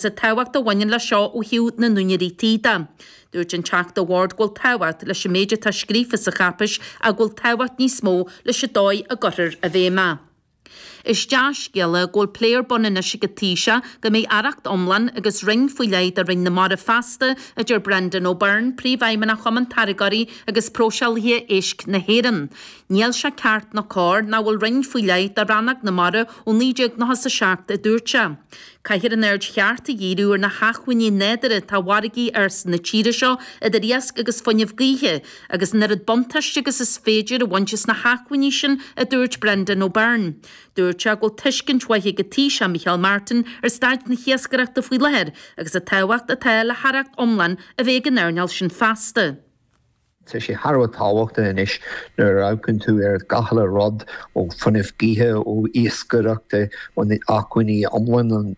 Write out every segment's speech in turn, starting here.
Sa tábhacht a bhaineann leis seo ó thaobh na n-úinéirí tí de, dúirt an Teachta Ward go bhfuil tábhacht leis an méid atá scríofa sa cháipéis ach go bhfuil tábhacht níos mó leis an dóigh a gcuirtear i bhfeidhm é. Is dea-scéala go bhfuil plé ar bun anois ag an Taoiseach go mbeidh aireacht iomlán agus roinn faoi leith do Roinn na Mara feasta, a deir Brendan O'Byrne, Príomhfheidhmeannach Chumann Táirgeoirí agus Próiseálaithe Éisc na hÉireann. Níl sé ceart ná cóir nach bhfuil roinn faoi leith do Rannóg na Mara ó 1997, a dúirt sé. Caithfear an aird cheart a dhíriú ar na hacmhainní nádúrtha atá i bhfarraigí na tíre seo idir iasc agus fuinneamh gaoithe agus an oiread buntáiste agus is féidir a bhaint as na hacmhainní sin a dúirt Brendan Ó Beirn. Dúirt sé go bhfuil tuiscint mhaith ag an Taoiseach Micheál Martin ar staid na hiascaireachta faoi láthair agus an tábhacht atá le haireacht iomlán a bheith ag an earnáil sin feasta. Tá sé thar a bheith tábhachtach anois nuair a amharcann tú ar gach uile rud, ó fuinneamh gaoithe, ó iascaireachta, ó na acmhainní iomlán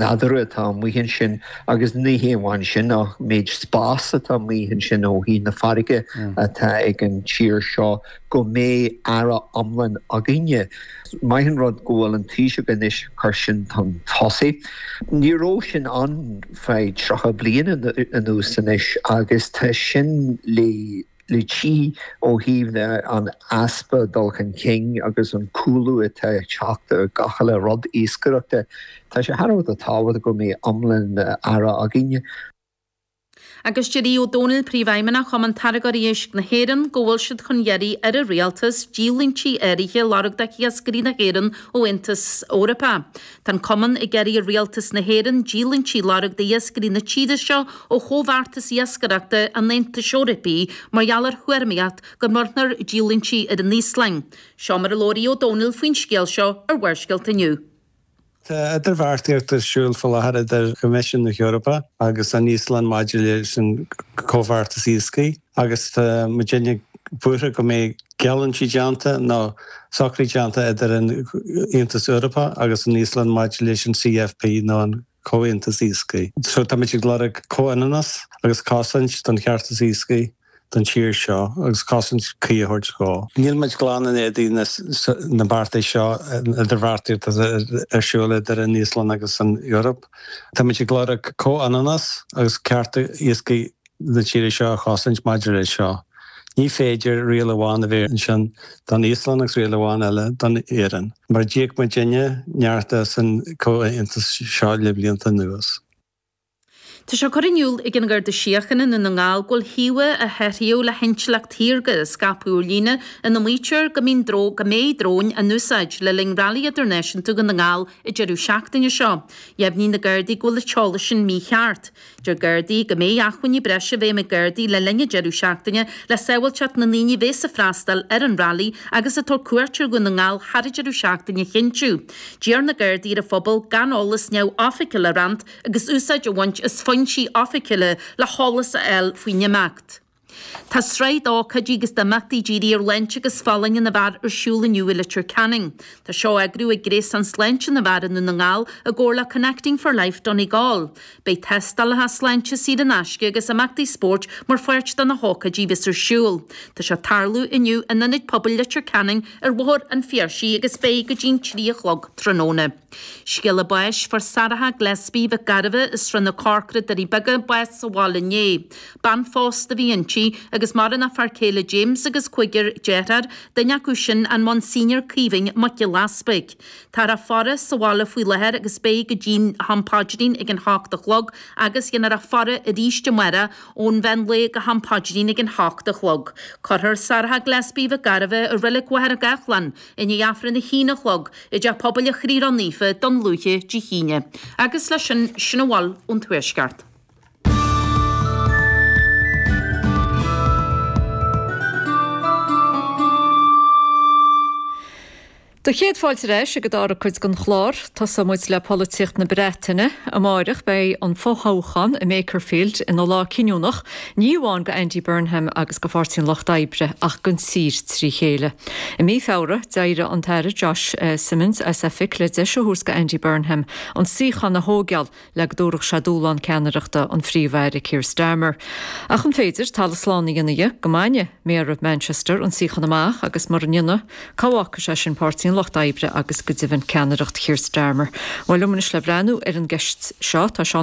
nádúrtha atá amuigh ansin, agus ní hé amháin sin ach an méid spáis atá amuigh ansin ó thaobh na farraige atá ag an tír seo. go mbeidh aire iomlán againne. Maith an rud go bhfuil an Taoiseach anois cur sin chun tosaigh. Ní raibh sin ann le 30 bliain anuas anois agus tá sin le feiceáil ó thaobh an easpa dul chun cinn agus an cúlú atá ag teacht ar gach uile rud iascaireachta. Tá sé thar a bheith tábhachtach go mbeidh iomlán aire againne. Agus deir Aodh O'Donnell, Príomhfheidhmeannach Chumann Táirgeoirí Éisc na hÉireann, go bhfuil siad chun iarraidh ar an Rialtas díolúintí áirithe a lorg d'iascairí na hÉireann ón Aontas Eorpach. Tá an Cumann ag iarraidh ar Rialtas na hÉireann díolúintí a lorg d'iascairí na tíre seo ó Chomhbheartas Iascaireachta an Aontais Eorpaigh mar gheall ar thuairmíocht go mbronnfar díolúintí ar an Íoslainn. Seo mar a labhair Aodh O'Donnell faoin scéal seo ar Bharrscéalta inniu. Tá idirbheartaíocht ar siúl faoi láthair idir Coimisiún na hEorpa agus an Íoslainn maidir leis an gcomhbheartas iascaigh agus tá muid an-bhuartha go mbeidh geallúintí déanta nó socruithe déanta idir an Aontas Eorpach agus an Íoslainn maidir leis an CFP nó an Comhaontas Iascaigh. So táimid ag lorg comhionannas agus cosaint don cheartas iascaigh. don tír seo agus cosaint cuí a thabhairt dhó. Níl muid glan in éadan na mbeartas seo, an idirbheartaíocht atá ar siúl idir an Íoslainn agus an Eoraip. Tá muid ag lorg comhionannas agus cearta iascaigh na tíre seo a chosaint maidir leis seo. Ní féidir riail amháin a bheith ansin don Íoslainn agus riail amháin eile don Éirinn, mar a d'íoc muid an-neart as an gcomhaontas seo le blianta anuas. Tá sé curtha in iúl ag an Gharda Síochána i nDún na nGall go bhfuil íomhá a hathraíodh le hintleacht shaorga á scaipeadh ar líne ina maítear go mbíonn go mbeidh dróin á n-úsáid le linn Railí Idirnáisiúnta Dhún na nGall an deireadh seachtaine seo. Dheimhnigh na Gardaí go bhfuil an t-eolas sin mícheart. Deir Gardaí go mbeidh acmhainní breise i bhfeidhm ag Gardaí le linn an deireadh seachtaine le sábháilteacht na ndaoine a bhéas ag freastáil ar an Railí agus ag tabhairt cuairt ar Dhún na nGall thar an deireadh seachtaine a chinntiú. D'iarr na Gardaí ar an phobal gan eolas neamhoifigiúil a roinnt agus úsáid a bhaint as foinsí oifigiúla le heolas a fháil faoin imeacht. Tá sraith d'ócáidí agus d'imeachtaí dírithe ar shláinte agus folláine na bhfear ar siúl inniu i Leitir Ceanainn. Tá seo á eagrú ag Gréasán Sláinte na bhFear i nDún na nGall i gcomhar le Connecting for Life Donegal. Beidh tástálacha sláinte saor in aisce agus imeachtaí spóirt mar pháirt de na hócáidí a bheas ar siúl. Tá sé ag tarlú inniu in Ionad Pobail Leitir Ceanainn ar Bhóthar an Phiarsaigh agus beidh go dtí'n trí a chlog tráthnóna. Scéala báis fuair Sarah Gillespie, Mhic Gairbheith, as Srath na Corcra, Doirí Beaga, bás sa bhaile inné. Bean phósta a bhí inti, agus maireann a fear céile James agus cúigear dearthár, duine acu sin an Monsignor Caoimhín Mac Giolla Easpaig. Táthar á faire sa bhaile faoi láthair agus beidh go dtí'n ham paidrín ag an hocht a chlog agus dhéanfar a faire arís amárach ón mheán lae go ham paidrín ag an hocht a chlog. Cuirfear Sarah Gillespie Mhic Gairbheith i Reilig Mhachaire Gathlán i ndiaidh Aifreann a haon a chlog i dTeach Pobail an Chroí Ró-Naofa Dún Lúiche Dé hAoine agus leis sin sin a bhfuil ón Tuaisceart. Do chéad fáilte ar ais ag an dara cuid den chlár. Tosóidh muid le polaitíocht na Breataine. Amáireach beidh an fo-thoghchán i Makerfield ina lá cinniúnach, ní amháin do Andy Burnham agus do Pháirtí an Lucht Oibre ach don tír trí chéile. I mí Feabhra d'éirigh an tAire Josh Simons as oifig le deis a thabhairt do Andy Burnham an suíochán a thóigeáil, le go dtabharfadh sé dúshlán ceannaireachta an Phríomh-Aire Keir Starmer. Ach an féidir talamh slán a dhéanamh de go mbainfidh Méara Manchester an suíochán amach agus mura ndéanfaidh, cá bhfágfaidh sé sin Páirtí an Lucht Oibre agus go deimhin ceannaireacht Keir Starmer? Bhuel, liom anois le breathnú ar an gceist seo tá Seán Ó